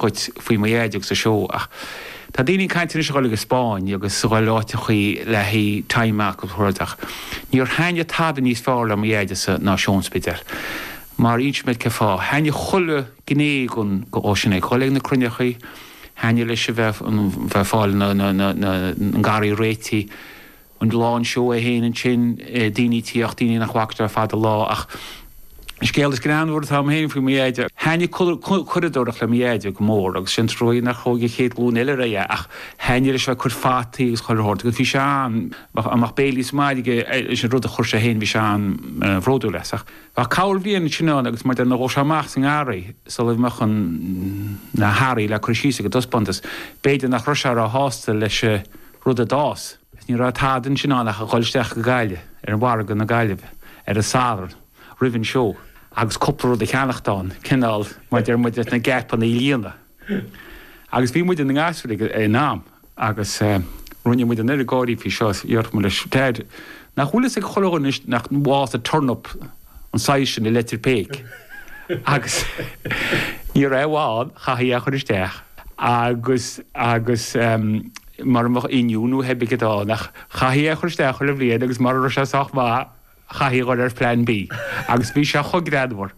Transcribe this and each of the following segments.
dhuit faoi mo Dheaid agus an seó ach tá daoine ag caint anois a dhul ag an Spáinn agus a dhul go áit eicínt le haghaidh time amach agus rudaí ach níor thaitnigh tada níos fearr le mo Dheaid ná seó an Spidéil mar inseoidh mé cén fáth. Thaitnigh chuile ghné dhon ghnó sin leis. Dhul ag na cruinneachaí, thaitnigh leis a bheith ag fáil an gharraí réitigh. an lá an seó é féin ansin, daoine tíocht, daoine nach bhfaca tú le fada an lá ach an scéal is greannmhar atá a'm féin faoi mo dheaide, thaitnigh curadóireacht le mo dheaide go mór agus is trua nach dtug an chéad ghlúin eile leo é ach thaitnigh leis a bheith ag cur fataí agus chuile shórt agus bhí sé an, mbeadh béilí sa mbaile aige leis an rud a chuir sé féin bhí sé an-bhródúil as ach bheadh corrbhliain ansin ann agus nuair a ghabhfadh sé amach sa ngarraí sula mbeadh an, na, hearraí le cur síos go dtí an taispeántas, b'fhéidir nach raibh sé ró shásta leis an. rud a d'fhás, is ní raibh tada ansin ann ach a dhul isteach go Gaillimh, ar mhargadh na Gaillimhe, ar an Satharn, roimh an seó, agus cúpla rud a cheannacht ann, cineál, mar a deir muid, leis na geepanna a líonadh. Agus bhí muid inár ngasúir ag an am, agus eh, rinne muid an oiread gáirí faoi seo, déarfadh muid leis Deaid, Nach bhfuil fhios ag chuile dhuine anois nach bhfásadh turnap an size sin i Leitir Péic agus ní raibh aon bhaint, chaithfí é a chur isteach agus, agus ehm mara mbeadh oinniún nó pé ar bith céard a bhí ann ach chaithfí é a chur isteach chuile bhliain agus mara raibh sé sách maith chaithfí a dhul ar phlean B agus bhí sé chomh greannmhar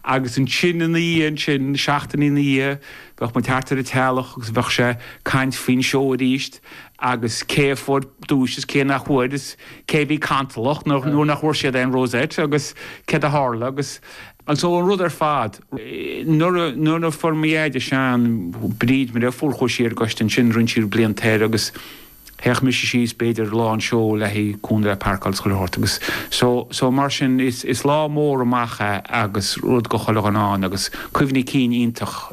agus ansin ina dhiaidh sin, seachtainí ina dhiaidh, bheadh muid thart ar an teallach agus bheadh sé caint faoin seó aríst agus cé a fuair duais is cé nach bhfuair is cé a bhí cantalach nuair nach bhfuair siad aon rosette agus céard a tharla agus so an rud ar fad, nuair a fuair mo Dheaid sean, Bríd, Maria, fuair chuaigh sí ar an gcoiste ansin roinnt, cúpla bliain siar agus théadh mise síos b'fhéidir lá an seó le haghaidh cúnamh le pairceáil is chuile shórt agus so, so mar sin is lá mór amuigh é agus rud go chuile dhuine ann agus cuimhní cinn iontach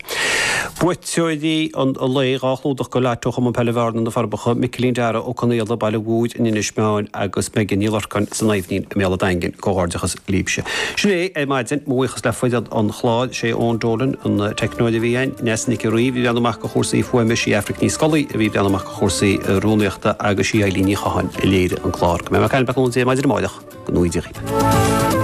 Buaiteoirí an lae, dhá chlúdach don lotto ó Chumann Peile Bhearna, Na Forbacha, Micilín Dara Ó Conaola, Baile an Mhothair, in Inis Meáin agus Megan Ní Lorcáin, San Aibhnín, i mBéal an Daingin. Comhghairdeachas libhse. Sin é ar maidin. Mo bhuíochas le foireann an chláir, sé Eoin Dolan an teicneolaí a bhí again, Neasa Nic an Rí bhí ag breathnú amach go chúrsaí fuaime, sí Aifric Ní Scolaí a bhí ag breathnú amach go chúrsaí rúnaíochta agus sí Eilín Ní Chatháin a léirigh an clár. Go mbeidh mé ag caint libh tar éis a naoi maidin amárach. go n-éirí libh.